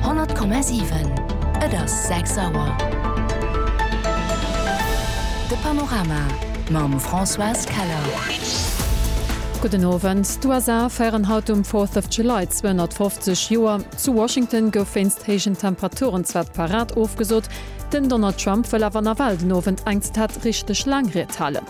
100,7 Et ass 6 Auer. De Panorama mam Françoise Keller. Gudden Owend. D'USA féieren haut um Fourth of July 250 Joer. Zu Washington gouf wéinst héijen Temperaturen zwar d'Parad ofgesot, den Donald Trump wëll awer nawell den Owend eng Ztat richteg laang Ried halen.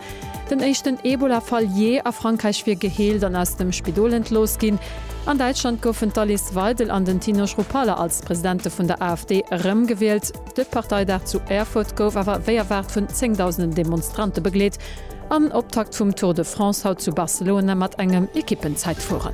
Den éischten Ebola-Fall jee a Frankräich wier geheelt an aus dem Spidol entlooss ginn. An Däitschland goufen d'Alice Weidel an den Tino Schruppalla als Presidente vun der AfD erëmgewielt. De Parteidag zu Erfurt gouf awer wéi erwaart vun zéngdausenden Demonstrante begleet. An Optakt vum Tour de France haut zu Barcelona mat engem Ekippenzäitfueren.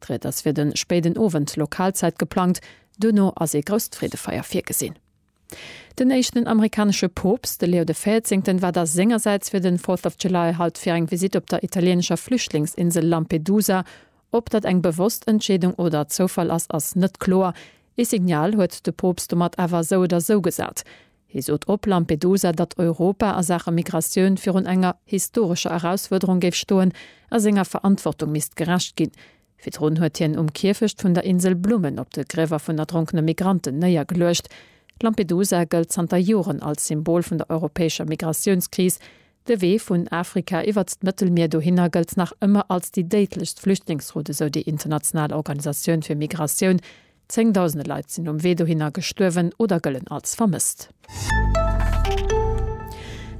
D'Ried ass fir de spéiden Owend Lokalzäit geplangt, duerno ass ee grousst Freedefeier virgesinn. Den éischten amerikanesche Poopst, de Leo de Véierzéngten, war da sengersäits fir den Fourth of July haut fir eng Visitt op der italienescher Flüchtlingsinsel Lampedusa. Ob dat eng bewosst Entscheedung oder Zoufall ass, ass net kloer. Ee Signal huet de Poopst domat awer esou oder esou gesat. Hie sot op Lampedusa, datt Europa a Saache Migratioun virun enger historescher Erausfuerderung géif stoen a senger Verantwortung misst gerecht ginn. Virdrun huet hien um Kierfecht vun der Insel Blummen op de Griewer vun erdronkene Migranten néiergeluecht. Lampedusa gëllt zanter Joren als Symbol vun der europäescher Migratiounskris. De Wee vun Afrika iwwert d'Mëttelmier dohinner gëllt nach ëmmer als déi déidlechst Flüchtlingsroute, sou déi international Organisatioun fir Migratioun, Zéngdausende Leit sinn um Wee dohinner gestuerwen oder gëllen als vermësst.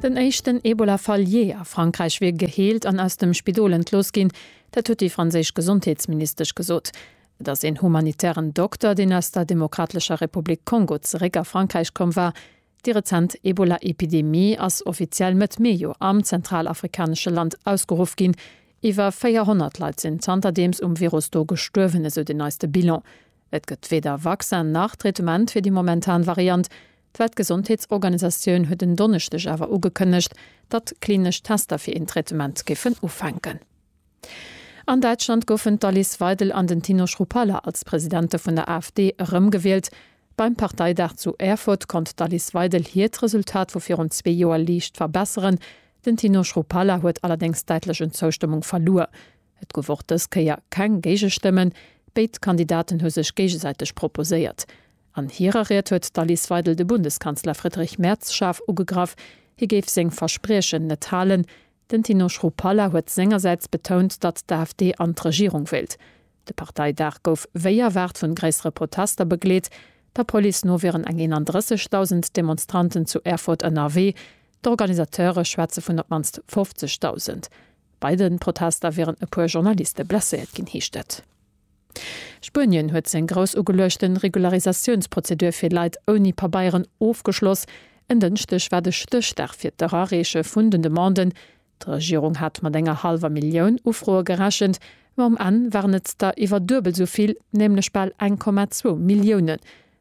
Den éischten Ebola-Fall jee a Frankräich wier geheelt an aus dem Spidol entlooss ginn. Dat huet déi franséisch Gesondheetsministesch gesot. Et ass een humanitären Dokter, deen aus der Demokratlescher Republik Kongo zeréck a Frankräich komm war, Déi rezent Ebola-Epidemie ass offiziell Mëtt Meejo am zentralafrikanesche Land ausgeruff ginn. Iwwer 400 Leit sinn zanterdeems um Virus do gestuerwen, esou den neiste Bilan. Et gëtt weder Vaccin nach Traitement fir déi momentan Variant. D'Weltgesondheetsorganisatioun huet en Donneschdeg awer ugekënnegt, datt klinesch Tester fir een Traitement géifen ufänken. An Däitschland goufen d'Alice Weidel an den Tino Schruppalla als Presidente vun der AfD erëmgewielt. Beim Parteidag zu Erfurt konnt d'Alice Weidel hiert Resultat vu virun zwee Joer liicht verbesseren. Den Tino Schruppalla huet allerdéngs däitlech un Zoustëmmung verluer. Et gouf och dës Kéier keng Géigestëmmen. Béid Kandidaten hu sech géigesäiteg proposéiert. An hirer Ried huet d'Alice Weidel de Bundeskanzler Friedrich Merz schaarf ugegraff, hie géif seng Verspriechen net halen. Den Tino Schroepalla huet sengersäits betount, datt d'AfD an d'Regierung wéilt. De Parteidag gouf wéi erwaart vun gréissere Protester begleet. Der Police no wieren eng 31.000 Demonstranten zu Erfurt ënnerwee, d'Organisateure schwätze vun op d'mannst 50.000. Bei de Protester wieren e puer Journaliste blesséiert ginn, heescht et. Spuenien huet seng grouss ugeluechte Regularisatiounsprozedur fir Leit ouni Pabeieren ofgeschloss. En Dënschdeg war de Stéchdag fir d'Erareeche vun den Demanden. D'Regierung hat mat enger hallwer Millioun Ufroe gerechent, ma um Enn waren et der iwwer duebel esou vill, nämlech bal 1,2 Milliounen.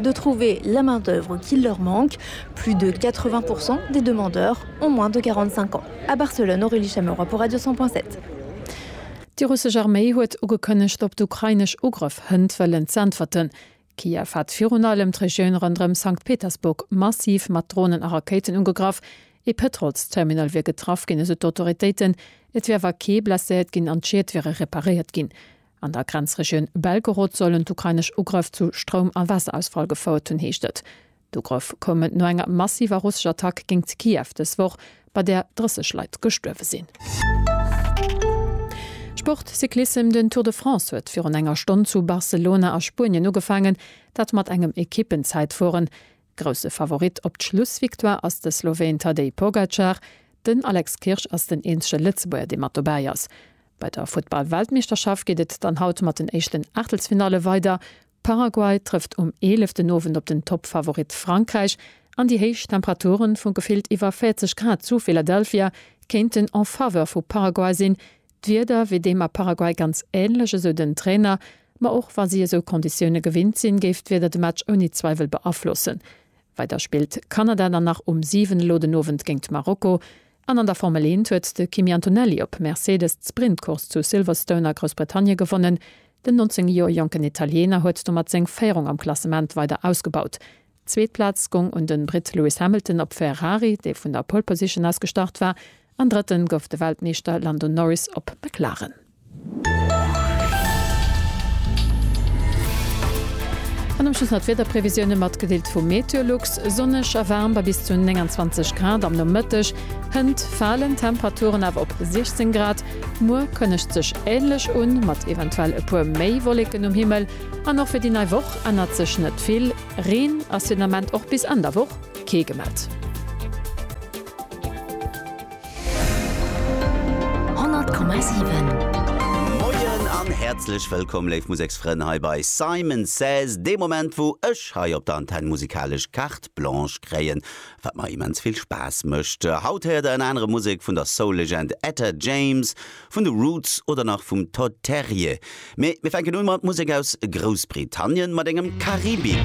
de trouver la main d'œuvre qui leur manque, plus de 80 pourcent des demandeurs ont moins de 45 ans à Barcelone, Aurélie Chameroy pour Radio 100.7. Déi russesch Arméi huet ugekënnegt op d'ukrainesch Ugrëff hënt wëllen z'äntwerten. Kiew hat virun allem d'Regioun ronderëm Sankt Petersburg massiv mat Dronen a Rakéiten ugegraff. Ee Pëtrolsterminal wier getraff ginn, esou d'Autoritéiten. Et wier awer kee blesséiert ginn an d'Schied wiere reparéiert ginn. An der Grenzregioun Belgorod sollen d'ukrainesch Ugrëff zu Stroum a Wasserausfall gefouert hunn, heescht et. D'Ugrëff koumen no enger massiver russescher Attack géingt Kiew dës Woch, bei där 30 Leit gestuerwe sinn. Sport, Cyclissem, Den Tour de France huet virun enger Stonn zu Barcelona a Spuenien ugefaangen, dat mat engem Ekippenzäitfueren. Grousse Favorit op d'Schlussvictoire ass de Sloween Tadej Pogacar. Den Alex Kirsch ass den eenzege Lëtzebuerger, dee mat dobäi ass. Bei der Futtball-Weltmeeschterschaft geet et dann haut mat den éischten Aachtelsfinalle weider. Paraguay trëfft um eeleften Owend op den Toppfavorit Frankräich an déi héich Temperature vu gefillt iwwer 40 Grad zu Philadelphia kéinten en Faveur vu Paraguay sinn, D'Wieder wier deem a Paraguay ganz änlech, esou den Trainer. Ma och wa si esou Konditioune gewinnt sinn, géif d'Wieder de Match ouni Zweiwel beaflossen. Weider spillt Kanada dann nach um 7 elo den Owend géint Marokko. An an der Formel Eent huet de Kimi Antonelli op Mercedes d'Sprintcourse zu Silverstone a Groussbritannie gewonnen. Den 19 Joer jonken Italiener huet domat seng Féierung am Klassement weider ausgebaut. D'zweet Plaz gong un den Britt Lewis Hamilton op Ferrari, dee vun der Pole Position aus gestart war, an drëtten gouf de Weltmeeschter Lando Norris op McLaren. An am Schluss nach d'Wiederprevisioune matgedeelt vu Meteolux, Sonneg a waarm bei bis zu 29 Grad am Nomëtteg, hënt falen Temperaturen awer op 16 Grad. Muer kënnegt sech änlech un, mat eventuell e puer méi Wolleken um Himmel. An och fir déi nei Woch ännert sech net vill. Reen ass fir den Ament och bis Enn der Woch kee gemellt. 100,7. Moien an häerzlech wëllkomm léif Museksfrënn hei bei Simon Says, dee Moment wou ech hei op der Antenn musikalesch Carte Blanche kréien, wat mer immens vill Spaass mécht. Haut héiert der ënner anerem Musek vun der Soul-Legend Etta James, vun de Roots oder nach vum Todd Terje. Mee mir fänken un mat Musek aus Groussbritannien, mat engem Karibik.